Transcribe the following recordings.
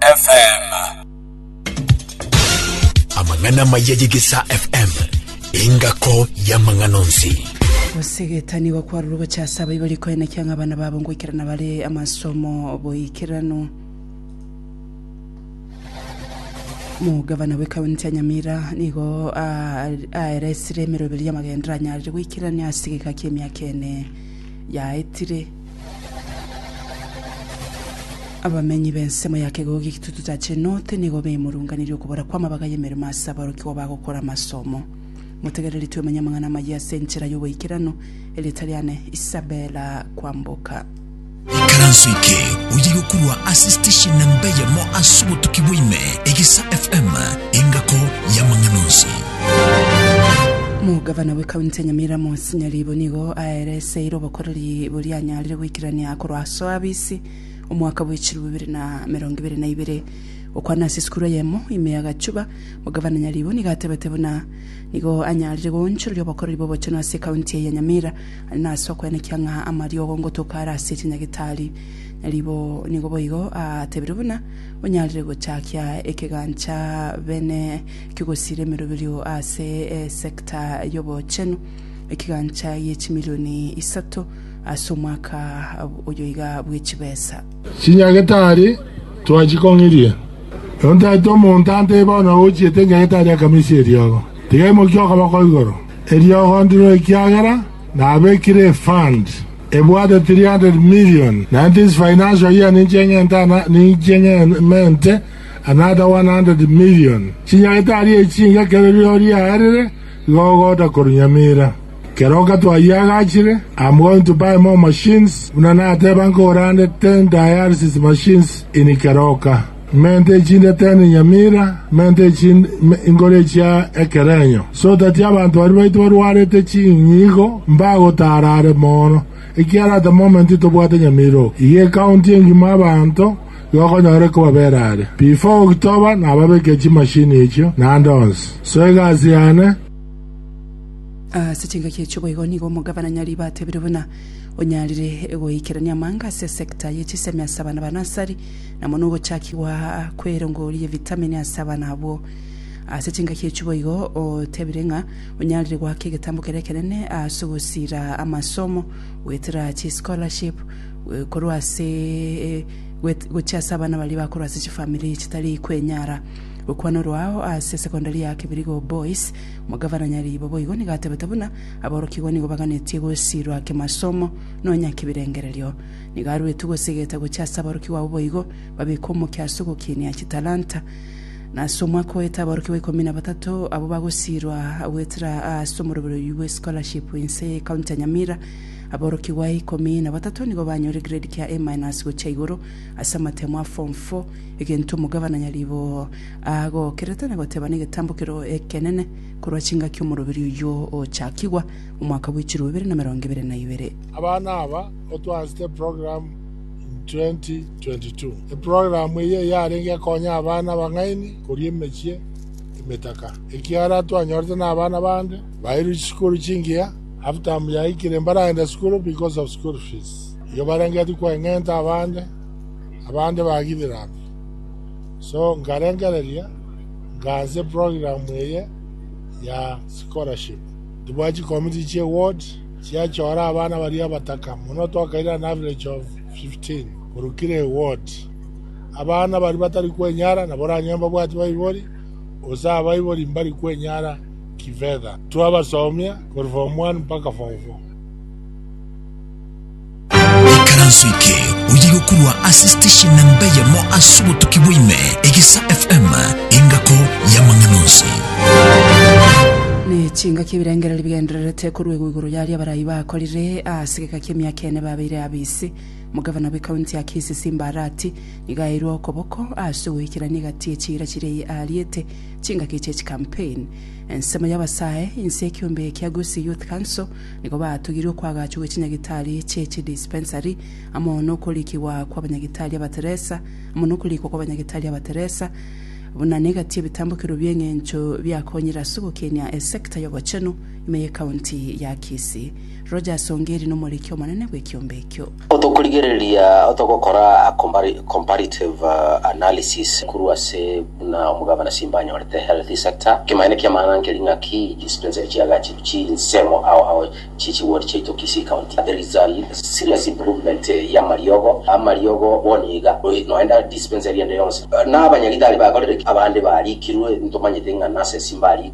FM. amang'ana amaya y'egesaa fm engako y'amang'ana onsi Gosegeta nigo kwarure gocha ase abayi bari koenekia ng'a abana babo ngoikerana bare amasomo boikeranu. Mugavana bw'ekaunti ya Nyamira nigo a- aeresire emeroberi y'amagendera anyarire goikerania ase egeka ki'emiaka ene yaetire. Abamenyi b'ensemo ya kegogo g'Ekitutu cha Cenote nigo bemurunganirie okobora kw'amabaga y'emeremo ase aborokigwa bagokora amasomo. Motegereretie omonyamang'ana amayie ase enchera y'oboikeranu, erieta riane Isabella Kwamboka. Ikaranso eke oye yokorwa ase station namba eyemo ase obotuki bwa ime, Egesa FM, engako y'amang'ana onsi. Omogavana bw'ekaunti ya Nyamira Monsinyori Ibo nigo aereseire obokoreri Ribo rianyarire goikerania korwa aso abisi omwaka bwe chilifu bibere na merongo ebere na ibere okwana ase esukuru eyemo ime ya Gachuba, Omogavana Nyaribo nigo atebete buna nigo anyarire goonchoreria obokoreri bw'obochenu ase ekaunti eye ya Nyamira aria nase okwenekia ng'a amariogo ngotoka are ase chinyagetari. Nyaribo nigo boigo atebirie buna onyarire gochakia ekegancha bene ki'ogosiira emeroberio ase esector y'obochenu. ekegancha gie chimilioni isato ase omwaka oyo iga bwe chibesa. Chinyagetari twachikong'irie. Ero ntaete omonto ante bono ochiete enyagetari akamesia eriogo. Tiga emokia okoboko igoro. Eriogo ndiro ekiagera nabekire efund ebwate 300 million na inche ase financial year ninche eng'ente ana ninche ng'emente another 100 million. Chinyagetari echi inga kero rirorio riaerire Nigo ogoota korwa Nyamira. Kera okatwayia agachire, I'm going to buy more machines, buna nateba nkore ande ten dialysis machines in Keroka, mente echinde ten Nyamira, mente echinde me, inkore echia ekerenyo, so that abanto baria baito barwarete chinyigo mbagotaara are moono, ekiara at the moment tobwate Nyamira oo. Iga ecounty engima abanto, gokonyora ekobabera are. Before October nababekeria chimashini echio naende onsi. So egasi yane. Ase chingaki echio boigo nigo omogabana Nyaribo atebire buna onyarire goikerania amanga ase esecta ye chisemi ase abana ba nasari na mono ogochakigwa kwerongori ye vitamini ase abana abwo. Ase chingaki echio boigo otebire ng'a onyarire goaka egetambo kere ekenene ase ogosira amasomo goetera chischolarship korwa ase gochia ase abana baria bakorwa ase chifamiri chitari kwenyara. Gokwana orwao ase esegondari ya Kibirigo Boys, Omogavana Nyariibo boigo nigo atebete buna aborokigwa nigo baganetie gosiirwa kimasomo nonya kibirengererio. Nigo aruetu gosegeta gochia ase aborokigwa abwo boigo babeke omokia ase ogokinia chitalanta. Na ase omwaka oete aborokigwa ikomi na batato abwo bagosiirwa goetera ase omoroberi oyio bwe scholarship inse y'ecounty ya Nyamira. Aborokigwa ikomi na batato nigo banyore grade kia A minus gochia igoro ase amatemo a form four, egento omogabana nyaribo agokerete na goteba negetambo keroo ekenene korwa chingaki omoroberi oyio ochakigwa omwaka bwechirwe bibere na merongo ebere na ibere. Abana aba otwaasete program in 2022. Eprogram eyio yarenge ekonya abana abang'aini koria emechie emetaka. Ekiara twanyorete na abana bande bairwe chisukuru chingiya. Half-term yaikire mbaragenda sukuru because of school fees. Igo barengetie kweng'enta abande, abande bagidiranire. So nkarengereria, nkaanse program eye ya scholarship. Tibwati chikomiti chia eward chiachora abana baria abataka mono, twakaire an average of 15 korwa kira eward. Abana baria batari kwenyara nabo oranyore mbabwati baibori, gose abaibori mbari kwenyara. kifedha. Twabasomia korwa form one mpaka form four. Ekaranso eke oye gokurwa ase station namba eyemo ase obotuki bwaime, Egesa FM, engako y'amang'ana onsi. Nechingaki ebirengererio bigendererete koruegwa igoro yaria abarai bakorire ase egeka ki'emiaka ene babeire abisi. Omogavana bwe county ya Kisii Simba Arati nigo aeirwe okoboko ase ogoikerania egati ye chiira chiria ariete Chingaki chie chicampaign. Ensemo y'abasae, inse ekiombe ekia Gusii Youth Council nigo batogire okoagachwa gwe chinyagitari chie chi dispensary amo nokorikigwa kwa banyagitari abateresa amo nokorikwa kwa banyagitari abateresa buna negati ebitambokero bi'eng'encho biakonyire ase ogokenia esector y'ogochenu ime ye county ya Kisii. Rogers Ongeri nomoriki omonene bw'ekiombe ekio. Otokorigereria otogokora a comparative analysis korwa ase buna omogabana Simba anyorete healthy sector, ekemanyererio ki'amang'ana nkeri ng'aki dispensary chiagachiri chinsemo ao ao chie chiward chiaito Kisii County. There is a serious improvement y'amariogo, amariogo bono iga noenda dispensary ende yonsi. Nabanyagitari bakorire ki? Abande barikirwe, ntomanyete ng'a nase Simba arikire.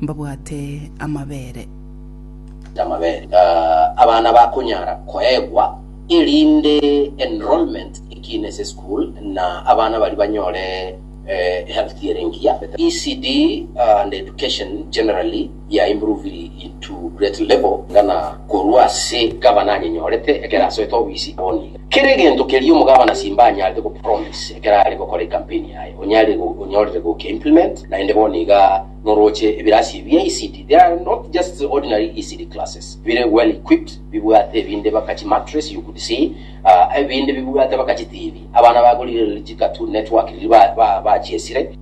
Mbabwate amabere. Y'amabere. Abana bakonyara koegwa erinde enrollment ekiina ase eschool na abana baria banyore health ere engiya. ECD and education generally ya improved into great level. Ng'ana korwa ase gavana anyenyorete ekero asoete obisi, bono iga. Kera egento keria omogavana Simba anyarete go promise ekero are gokora ecampaign yaye, onyare onyorire goke implement, naende bono iga norooche ebirasi bia ECD. They are not just the ordinary ECD classes, bire well equipped, bibwate ebinde baka chi mattress you could see, ah, ebinde bibwate baka chi TV. Abana bagorire riri chi cartoon network riri ba, ba, bachiesire.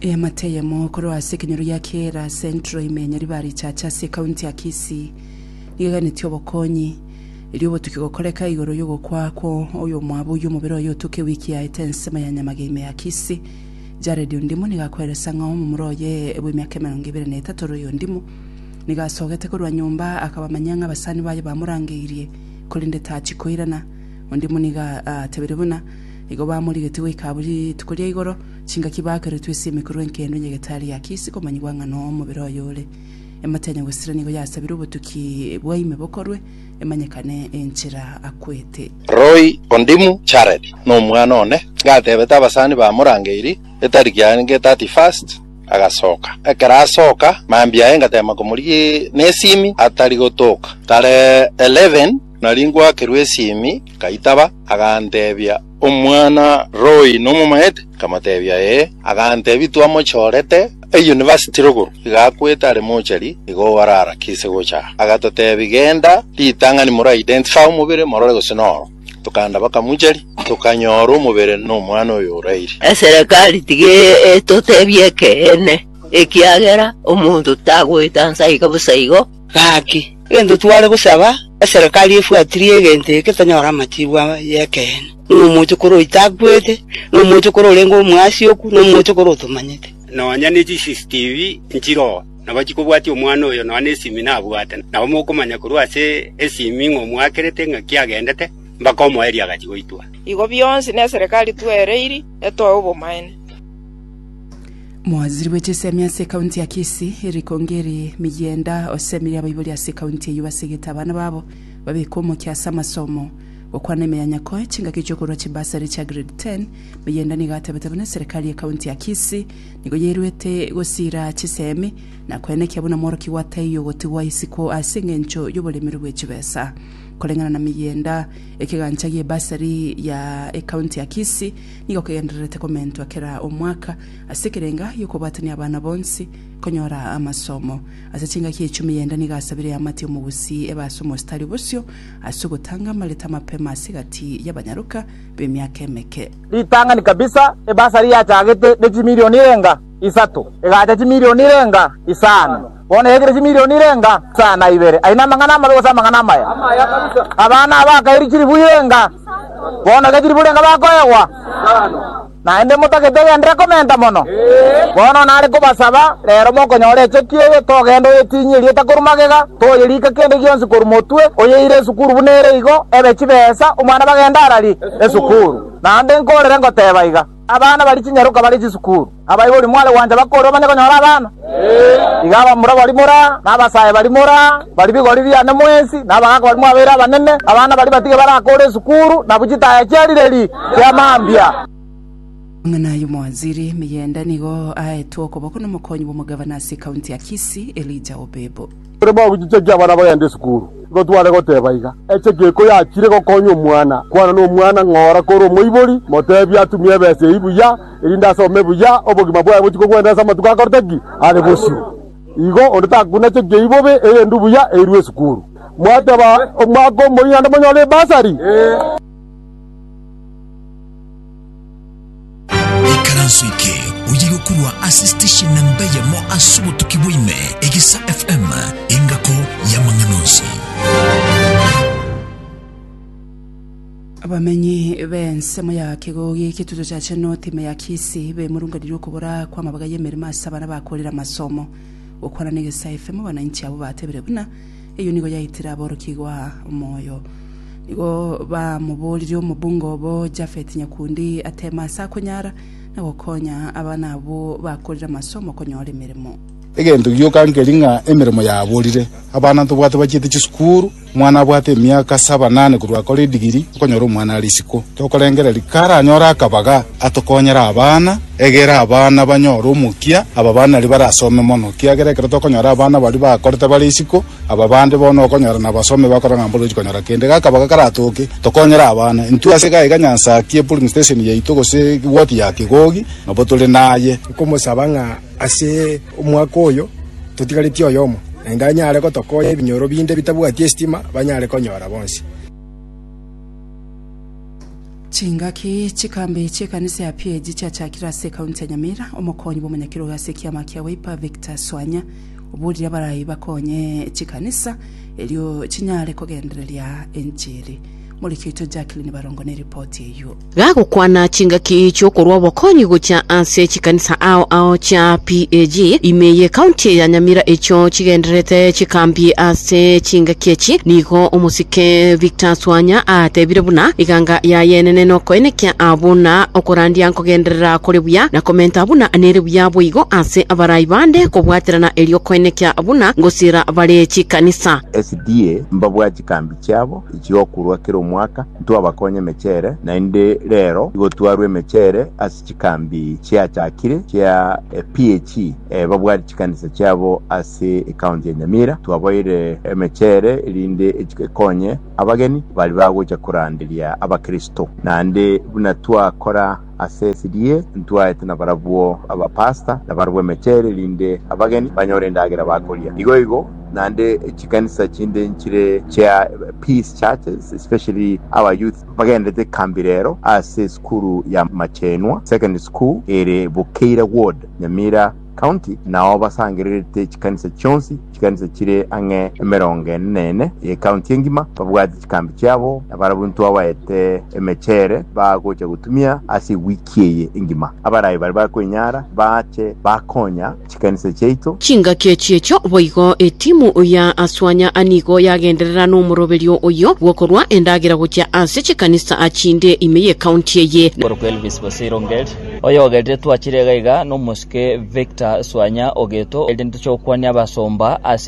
Eamate eyemo korwa ase ekenyoro gia Kiira Central ime Nyaribari Chacha ase ekaunti ya Kisii nigo eganetie obokonyi Erio obotuki gokoreka igoro y'ogokwa kwa oyomwabo oyio omobere oye otoke ewiki yaete ensemo ya nyamage ime ya Kisi. Jaredi ondimo nigo akweresa ng'a omomura oye bw'emiaka emerongo ebere na etato ore oyondimo. Nigo asogete korwa nyomba akabamanyia ng'a abasani baye bamorangeirie, korende tachi koirana. Ondimo nigo aatebire buna igo bamorigetie goika abwo rituko ria igoro chingaki baakeretwe esimi korwa enkendo enye getari ya Kisi komanyigwa ng'a nomobere oye ore. Emate ya Nyagwesera nigo yasabire obotuki bwa ime bokorwe, emanyekane enchera akwete. Roy Ondimu Jared nomwana one gatebete abasani ba Murangeri etariki yarenge 31st agasoka ekero asoka mambia aye ngatema komorigia nesimi atari gotoka tarehe 11 nari ngwakerwa esimi ngaitaba agantebia Omwana Roy nomomaete? Nkamotebia, Ee. Agantebia, Twamochorete eyunivasiti rogoro, iga akwete are mochari, igo orarakise gocha aa. Agatotebia, Genda ritang'ani more identify omobere, morore gose noro. Tokaenda bakamochari, tokanyora omobere nomwana oyo oraire. Eserekari tiga etotebie ekeene, ekiagera omonto tagoeta nsa iga bosa igo. Gaki, gento tware gosaba, eserekari efuatirie egento eke tonyore amatiku y'ekeene, nomochokoro oitakwete, nomochokoro orenge omoasioku, nomochokoro otomanyete. Nonya ne CCTV nchire oo, nabo chikobwatia omwana oyo nonya ne esimi nabwate, nabo mokomanya korwa ase esimi ng'a omwakerete ng'aki agendete, mbaka omoerio agachi goitwa. Igo bionsi neserekari twereiri etoe obomaene. Mowaziri bwe chisemi ase ekaunti ya Kisii, Eric Ongeri Migienda osemirie abaibori ase ekaunti eyio basegete abana babo babekwe omokia ase amasomo. Gokwana ime ya Nyakoe chingaki chiokorua chibursary chia grade 10, Migienda nigo atebete buna eserekari y'ekaunti ya Kisii nigo yairuete gosiira chisemi na koenekia buna mworokia gwa taiyo gotigwa isiko ase engencho y'oboremeri bwe chibesa. Koreng'ana na Migienda, ekegancha gi'ebursary ya ekaunti ya Kisii Nigo kegendererete komentwa kera omwaka ase ekerenga gi'okobwatania abana bonsi konyora amasomo. Ase chingaki echumi y'enda nigo asabire eamate omogusii ebe ase omositari bosio ase ogotanga amareta amapema ase egati y'abanyaroka b'emiaka emeke. Ritang'ani kabisa, ebasari yachagete ne chimilioni erenga isato, egacha chimilioni erenga isano. Bono yaikire chimilioni irenga saa na ibere, aye namang'ana amabe gose amang'ana amaya? Abana aba akairi chilifu irenga, bono iga chilifu irenga bakoegwa? Naende motagete egendire komenta mono? Bono nare kobasaba, rero mokonyora echeki eye, togende oyetinyie erieta korwa magega, toyerike kende gionsi korwa motwe, oyeire esukuru buna ere igo, ebe chibesa, omwana bagende arari esukuru. Naende nkoorere ngoteba iga. Abana bari chinyaroka bare chisukuru, abaibori mware gwancha bakore omanye konyora abana. Iga abamura bari mora, na abasae bari mora, bari bigori biane mwensi, na abagaaka bari mwabeire abanene, abana bari batige barakore esukuru, na bu chitaya chia rireri chia mambia. Ng'ina y'omowaziri Miyenda nigo aetwe okoboko n'omokonyi bw'omogavana ase ekaunti ya Kisii, Elijah Obebo. Ekero bagochichekia abana bagenda esukuru, nigo tware goteba iga, Eche geiko yachire gokonya omwana, kwana nomwana ng'a ora kore omoibori, motebi atumie ebesa eyio buya, erinde asome buya, obogima bwaye bochie kogwena ase amatuko akorete ki? Are bosio. Igo onde takunachekei bobe, erinde buya eirwe esukuru. Mwateba omwaka omoyio naende monyore ebasari? Ee. Ikaranso eke oye gokorwa ase station namba eyemo ase obotuki bwaime Egisa FM engako y'amang'ana onsi. Abamenyi b'ensemo ya Kigogi eketuto kya Chenot ime ya Kisii bemurunganire okobora kw'amabaga y'emeremo ase abana bakorire amasomo. Gokwana na Egesa FM abananchi abwo batebire buna Eyio nigo yaitire aborokigwa moyo. Nigo bamoboririe omobunga obo Jafeti nyakundi ateeme ase akonyara, na gokonya abana abwo bakorire amasomo konyora emeremo. Egento gioka nkeri ng'a emeremo yaborire, abana ntobwate bachiete chisukuru, omwana abwate emiaka saba nane korwa akore edigiri, okonyora omwana are isiko, tokorengereria, karanyore akabaga. Atokonyere abana, egera abana banyore omokia. Aba bana nario barasome mono, kiagera ekero tokonyora abana baria bakorete bare isiko, aba bande bono okonyora nabasome bakora ng'a mborochi konyora kende. Gakabaga karatoke, tokonyere abana. Intwe ase iga iga nyansa ki epulling station yaito gose ward ya Kigogi nabo tore naye. Nkomosaba ng'a ase omwaka oyo totigaretie oyomo, naende anyare gotokonya ebinyoro binde bitabwati esitima banyare konyora bonsi. Chingaki chikambe chi'ekanisa ya PAG chiachakire ase ekaunti ya Nyamira, omokonyi bw'omonyakerogo ase ekiama kia Wiper Victor Swanya oborire abarai bakonye chikanisa erio chinyare kogendereria enchiri. Moriki oito Jacqueline Barongo neripoti eyio. Gagokwana chingaki chi'okorwa obokonyi gochia ase. Chikanisa ao ao chia PAG ime ye county ya Nyamira echio chigendererete chikambie ase chingaki echi, nigo omosike Victor Swanya aatebire buna eganga yaye enene nokoenekia abwo na okorandia nkogenderera kore buya na komenta buna nere buya boigo ase abarai bande kobwaterana erio koenekia buna ngosiera bare chikanisa. SDA mbabwate chikambi chiabo chigokurwa kera omwaka, ntwabakonye emechere, naende rero igotwarwa emechere ase. Chikambi chiachakire chia PAC babwate chikanisa chiabo ase ecounty ya Nyamira. Twabaeire emechere erinde ekonye abageni baria bagocha koranderia abakristo. Naende buna twakora ase esiri'ye ntwaete nabarabwo abapastor nabarabwo emechere erinde abageni banyore endagera bakoria. Igo igo naende chikanisa chinde nchire chia Peace churches especially our youth. Bagenderete ekambi rero ase esukuru ya Machenwa Secondary School ere Bukeira Ward, Nyamira County, nao basangererete chikanisa chionsi. Chikanisa chire ang'e emerongo ene na ene y'ecounty engima babwate chikambi chiabo, na barabwo intwe abaete emechere bagocha gotumia ase ewiki eye engima. Abarai baria bakoenyara bache bakonya. chikanisa chiaito. Chingaki echi'echio boigo etimu ya Aswanya anigo yagenderera nomoroberio oyio bw'okorua endagera gochia ase chikanisa chinde ime y'ecounty eye. Korokwa Elvis Bosire Ongeri, oyogerire twachire iga iga, nomosike Victor Swanya ogeto, erinde chokwania abasomba ase